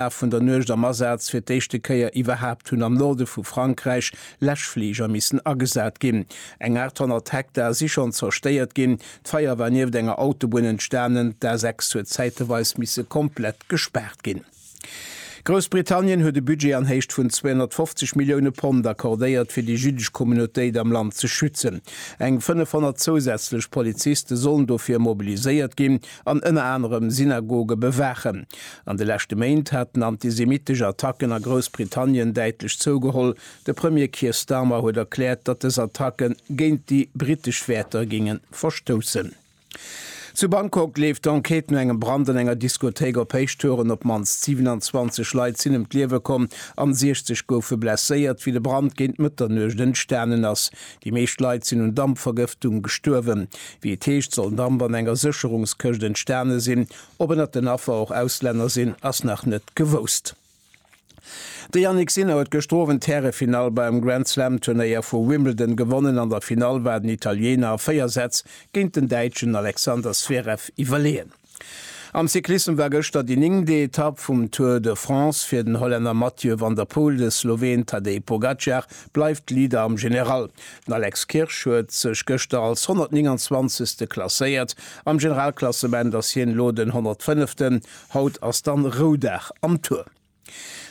Laf vun der Nuecht am Asaz fir d'éischte Kéier iwwerhaapt hunn am Norde vu Frankräich Läschfliger missen agesat ginn. Eng 800 Hektar si schonn zerstéiert ginn. D'Feier war nieft enger Autobunn entstanen. D'A6 huet zäiteweis misse komplett gespaart ginn. Groussbritannien huet e Budget an Héicht vun 250 Millioune Pond accordéiert fir déi jüddesch Communautéit am Land ze schützen. Eng 500 zousätzlech Poliziste sollen dofir mobiliséiert ginn. an ënner anerem Synagoge bewaachen. An de leschte Méint haten antisemittesch Attacken a Groussbritannien däitlech zougeholl. De Premier Keir Starmer huet erkläert, datt dës Attacke géint déi brittesch Wäerter géinge verstoussen. Zu Bangkok leeft d'Enquête no engem Brand an enger Diskothéik op Héichtouren. Op d'mannst 27 Leit sinn ëm d'Liewe komm an 60 goufe blesséiert, wéi de Brand géint Mëtternuecht entstanen ass. Déi meescht Leit sinn un Dampvergëftung gestuerwen. Wéi et heescht, soll Damp an enger Sécherungskëscht entstane sinn. Ob ënnert den Affer och Auslänner sinn, ass nach net gewousst. De Jannik Sinner huet gëschter Owend d'Härefinall beim Grand Slam Turnéier vu Wimbledon gewonnen. An der Finall war den Italiener a 4 Sätz géint den Däitschen Alexander Zverev iwwerleeën. Am Cyclissem war gëschter déi néngte Etapp vum Tour de France fir den Hollänner Mathieu van der Poel. De Sloween Tadej Pogacar bleift Leader am General. Den Alex Kirsch huet sech gëschter als 129. klasséiert. Am Generalklassement ass hien elo den 105. Haut ass dann Roudag am Tour.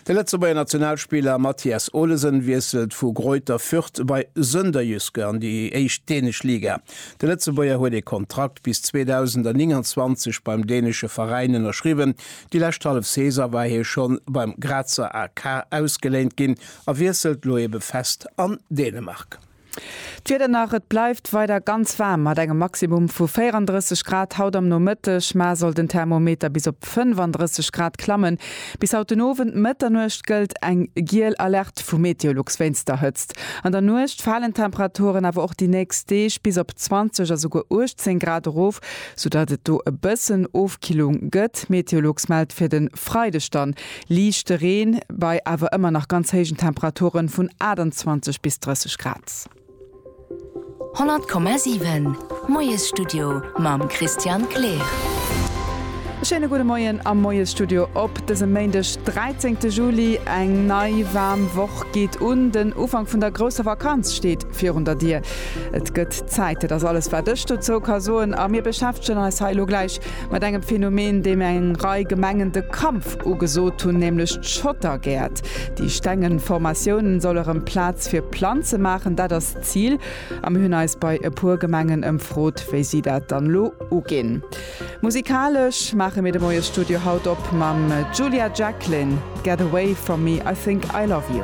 De Lëtzebuerger Nationalspiller Mathias Olesen wiesselt vu Greuther Fürth bei Sønderjyske an déi éischt dänesch Liga. De Lëtzebuerger huet ee Kontrakt bis 2029 beim dänesche Veräin ënnerschriwwen. Déi lescht hallef Saison war hie schonn beim Grazer AK ausgeléint ginn a wiesselt lo ebe fest an Dänemark. D'Wieder nach, Et bleift weider ganz waarm mat engem Maximum vu 34 Grad haut am Nomëtteg, mar soll den Thermometer bis op 35 Grad klammen. Bis haut den Owend, Mëtternuecht, gëllt eng giel Alerte vu Meteolux wéinst der Hëtzt. An der Nuecht falen d'Temperaturen awer och déi nächst Deeg bis op 20 a souguer 18 Grad erof, soudatt et do e bëssen Ofkillung gëtt. Meteolux mellt fir de Freideg dann Liichte Reen bei awer ëmmer nach ganz héijen Temperaturen vun 28 bis 30 Grad. 100,7 Moiesstudio mam Christian Kleer. E schéine gudde Moien am Moiesstudio op dësem Méindeg, 13 de Juli. Eng nei waarm Woch geet un, den Ufank vun der grousser Vakanz steet virun der Dier. Et gëtt Zäit, dat ass alles wat ech dozou ka soen a mir beschäftegen eis hei elo gläich Mat engem Phänomen, deem eng Rei Gemengen de Kampf ugesot hunn, nämlech d'Schottergäert. Déi stengen Formatiounen soll erëm Plaz fir Planze maachen, dat ass d'Zil. A mir hunn eis bei e puer Gemengen ëmfrot, wéi si dat dann elo uginn. Musikalesch maache mir de Moie Studio haut op mam Julia Jacklin, Get away from me, I think I love you.